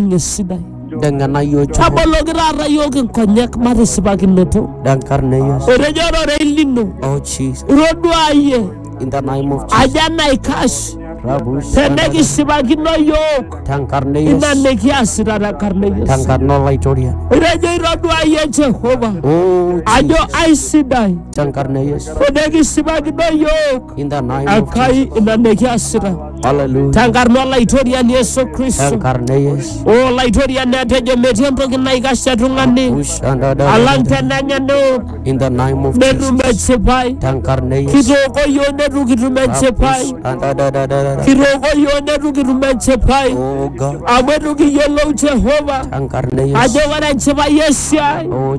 ninye esidai Dengana yo chuku. taboloki taata iyiook inkonyek matisipakinoto Denkarna Yesu. etejo ororei lino Oh Jesus. itoduaa iyie In the name of Jesus. aja naikash Rabus. tenekisipakino iyiook Denkarna ina Yesu. nikiasita tenkarna e Yesu Denkarna Olaitoriani. etejo itoduaa iyie Jehova Oh ajo Jesus. aisidai Denkarna Yesu. tenekisipakino iyiook In the name of Jesus. Enkai ina nikiasita Hallelujah. tenkarna olaitoriani Yesu Kristo. Tenkarna Yesu. O olaitoriani atejo metii entoki naikash te tung'ani alang Ushandadada. tenenya neok In the name of netum Jesus. enchipai. Tenkarna Yesu. Kitooko iyiook netu kitum enchipai. Ushandadadadada. Kitooko iyiook netu kitum enchipai. Oh God. Amu etu kiyiolou Jehova Tenkarna Yesu. ajo ore enchipai esiai Oh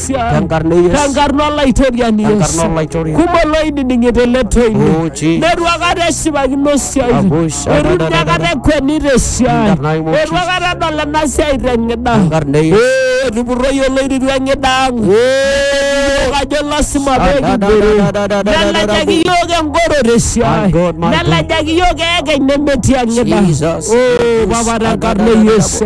Sia. Tenkarna e Yesu. Tenkarna olaitoriani Yesu. Tenkarna olaitoriani. Kumok loididing'ita ele toini. Oh, Jesus. Netu akata eshipakino esiai. Abusha, Etu ninye akata dadadada. ekweni te siai. In the name of Etu akata edol ena siai te ng'ida. Tenkarna e Yesu. Eh, Etupurroyie oloirirua ng'ida ang'. Yiok ajo lasima pee kibore. Nelejaki yiok engoro te siai. My God, my God. Nelejaki yiok eekeny nemetii eng'ida. Jesus. Oh, Papa tenkarna e Yesu.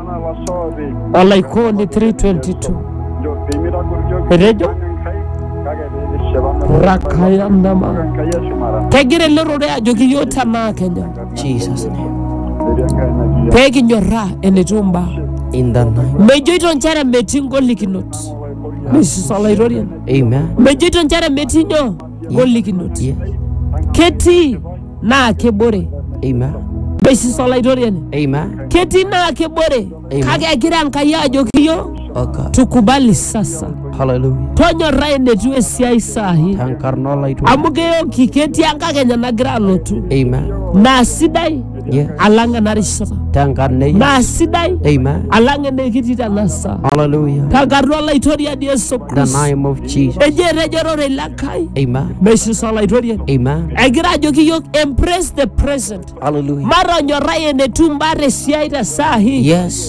olaikoni 322 etejo rakaya ndama kegira ele rorei ajoki yiok tenaa kenya Jesus' name. pee kinyorraa enetiu mbaa In the name. mejoito nchere metii ngolikinot mesis olaitoriani Amen. mejoito nchere metii nyoo ngolikinot Yes. ketii naa kebore Amen. mesis olaitoriani Amen. ketii naa kebore Amen. kake egira enkai ajoki yo Oh God. tukubali sasa Hallelujah. tonyorra enetiu esiai sahi Tankarna olaitoriani. amu keyoki ketii enkakenya nagira alotu Amen. naa sidai Ye. alang enarishata Tenkarna e Yesu. naa sidai Amen. alang enekitii tenasa Hallelujah. tenkarna olaitoriani Yesu The Kristo name of Jesus. ejo etejo ororei le Nkai Amen. meisisa olaitoriani Amen. egira ajoki yiok embrace the present Hallelujah. matonyorrai enetiu mbaa tesiai te saa hii Yes.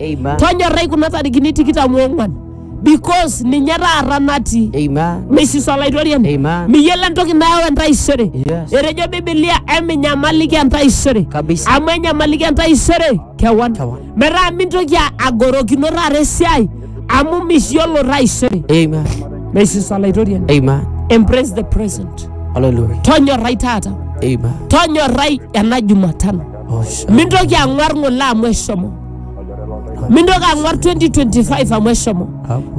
Amen. tonyorrai kuna tarikini tikitam oong'uan because ninye taata natii Amen. misis olaitoriani Amen. miyiolo entoki nayau entaisere Yes. etejo bibilia eminyamaliki entaisere Kabisa. amu enyamaliki entaisere kewan Kewan. metaa mintoki a- agorokino taata esiai amu miyiolo taisere Amen. misis olaitoriani Amen. embrace the present Hallelujah. tonyorrai taata Amen. tonyorrai ena jumatano mintoki ang'uar ng'ole amu eshomo mintoki ang'uar 2025 amu eshomo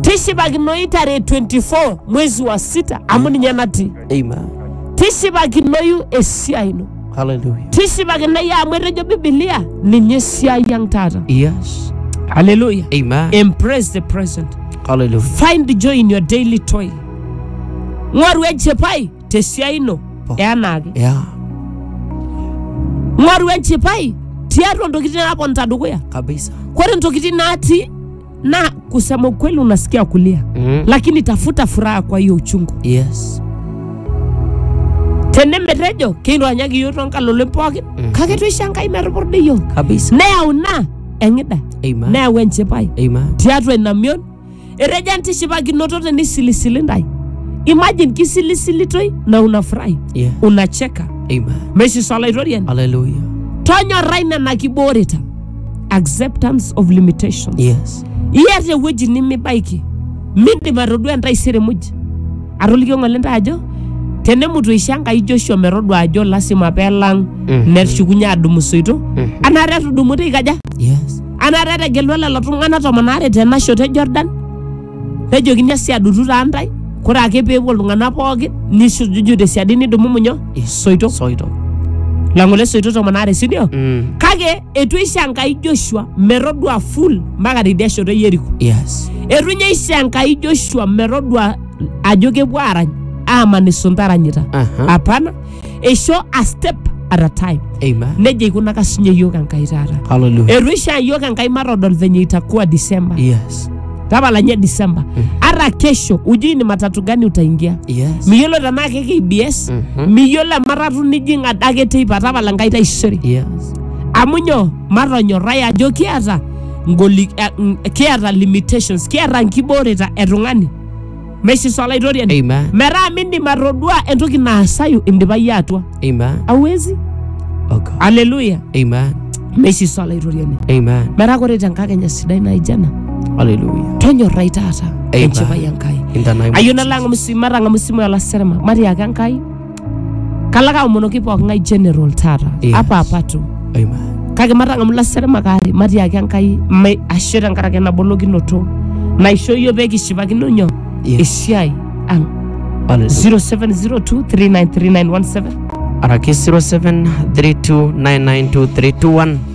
tishipakinoyu tarehe 24 mwezi wa sita amu ninye natii Amen. tishipakinoyu esiai ino Hallelujah. tishipakinoyu amu etejo bibilia ninye esiai ang taata Yes. haleluya Amen. embrace the present Hallelujah. find joy in your daily toil ng'oru enchipai te siai ino Po. eanaake ya ng'oru enchipai tiatua ntokitin naponita dukuya kabisa kore ntokitin natii na kusema ukweli unasikia kulia mm. lakini tafuta furaha kwa hiyo uchungu yes tenemetejo keironyaki yiok tonkalolin pookin Mhm. kake toisho enkai metupurda yiok kabisa neyau ina eng'ida amen neyau enchipai amen tiatua ina mion Etejo entishipakinoto tenisilisili intae. Imagine kisilisilitoi na unafurahi, Yeah. unacheka. Amen. Meshiso olaitoriani. Hallelujah. Tonyorrai nena kibooreta. Acceptance of limitations. Yes. Iata ewueji nimibaiki. Mindim atodua entaisere muj. Atolikio ng'ole ntae ajo tenemutu isha Enkai Joshua metodua ajo lasima pelang Mhm. neshukunye adumu soito. Mhm. Anaata etudumuta ikaja? Yes. Anaata etegelua lelo tung'anak tomon aare tena shoto e Jordan, nejokini esiadutu taa ntae, kore ake pee epuo iltung'anak pookin nisujudu te siadi nidumu nyoo isoito Soito. lang'ole isoito tomon aare si ndio? Mm. Kake eitu eisho Enkai Joshua metodua full mpaka tidia shoto e Yeriko. Yes. Eitu ninye eisho Enkai Joshua metodua ajo kepuo aarany aaman isunta aranyita. Aha. Hapana, eisho a step at a time Amen. nejia eikunaka sinye yiok enkai taata Hallelujah. eitu ishaa yiok enkai matodol venye itakuwa disemba Yes. tapala nye disemba ara kesho ujui ni matatu gani utaingia Yes. miyiolo tenaa ke kbs Mhm. miyiolo ematatu nijing adake teipa tapala nkai taisere Yes. amu nyoo matonyorrai ajo kiata ngoli, eh, mm, kiata limitations kiata nkibooreta etung'ani Meisis Olaitoriani. Amen. Metaa mindim atodua entoki naasayu indipa iyie atua. Amen. Hauwezi. Oh God. Haleluya. Amen. Meisis Olaitoriani. Amen. Metaa ore tenkakenya sidai naijo ena, Hallelujah. tonyorrai taata Amen. enchipai Enkai. In the name of Ayieu nalo ang'amu esimu, matang'amu esimu e Olaserema, matiaki Enkai Kalo ake aomonoki pooking'ae general taata Yes. apa apa tu Amen. kake matang'amu ilaseremak aare matiaki Enkai me- ashe tenkaraki enabolokinoto naisho iyio pee kishipakino nyoo Yes. esiai ang Hallelujah. 0702393917 Araki 0732992321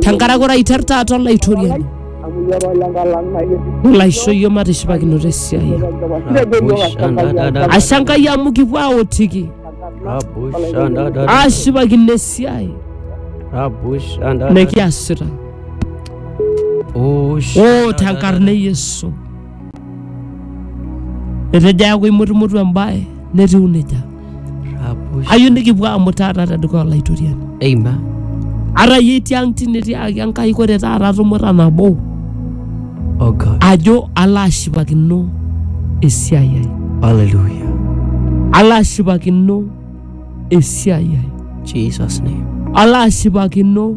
tenkaraki ore aiter taata olaitoriani nelo aisho iyio matishipakinoto esiai ang. ashe enkai amu kipuo aotiki ashipakino esiai nikiasita o tenkarna e yesu etejo eaku imutumutu embae netiu nejia Rapush. ayieu nikipuo amu taata tedukuya olaitoriani Amen. ara yie tiang tine tiaki enkai kore taata tumuta nabo Oh God. ajo ala ashipakino esiai ai Hallelujah. ala ashipakino esiai ai Jesus' name. ala ashipakino